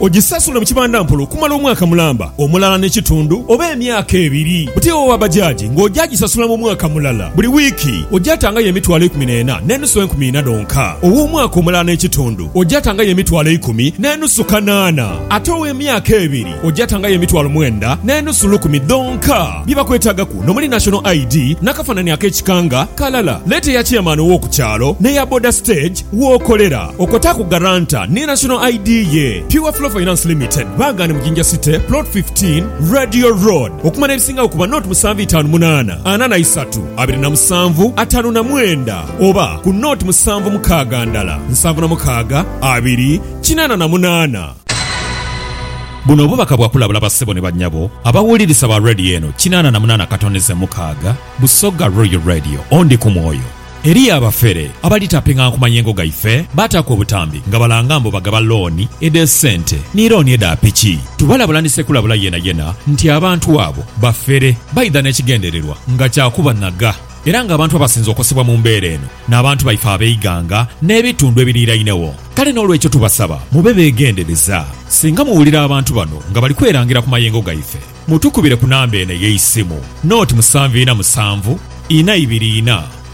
Ogisasula mu kibandampola okumala omwaka mulamba omulala ne kitundu oba emyaka ebiri buti owa bajaji nga oja gisasula mu mwaka mulala. Buli wiiki oja tangayo emitwalo eikumi n'ena n'enusu enkumi ina dhonka. Ow'omwaka omulala ne kitundu oja tangayo emitwalo eikumi n'enusu kanaana. Ate ow'emyaka ebiri oja tangayo emitwalo mwenda n'enusu lukumi dhonka. Bye bakwetagaku nomuli National ID n'akafanani ak'ekika nga kalala. Leta eya chairman ow'oku kyalo n'eya boda stage. Wookolera okwo taaku guarantor ni National ID ye. Pure Flow Finance Limited baagane mu Jinja City, Plot 15, Radio Road. Okumala ebisingagho ku banoti musanvu itaanu munaana ana na isatu abiri na musanvu ataanu na mwenda oba ku noti musanvu mukaaga ndala nsanvu na mukaaga abiri kinaana na munaana. Buno bubaka bwa kulabula bassebo ni bannyabo abawulirisa ba Radio eno kinaana na munaana katondeze mukaaga, Busoga Royal Radio, Ondi ku mwoyo. Eriyo abafere abalitapinga nku mayengo gaife baataaku obutambi nga balanga mbu bagaba looni edh'esente ni looni edha piki. Tubalabula ni sekulabula yenayena nti abantu abo bafere baidha n'ekigendererwa nga kya kubanhaga era ng'abantu abasinze okosebwa mu mbeera eno n'abantu baife ab'eighanga n'ebitundu ebiriirainegho. Kale n'olwekyo tubasaba mube beegendereza. Singa muwulira abantu bano nga bali kwerangira ku mayengo gaife, mutukubire ku namba eno ey'eisimu, noti musanvu ina musanvu ina ibiri ina.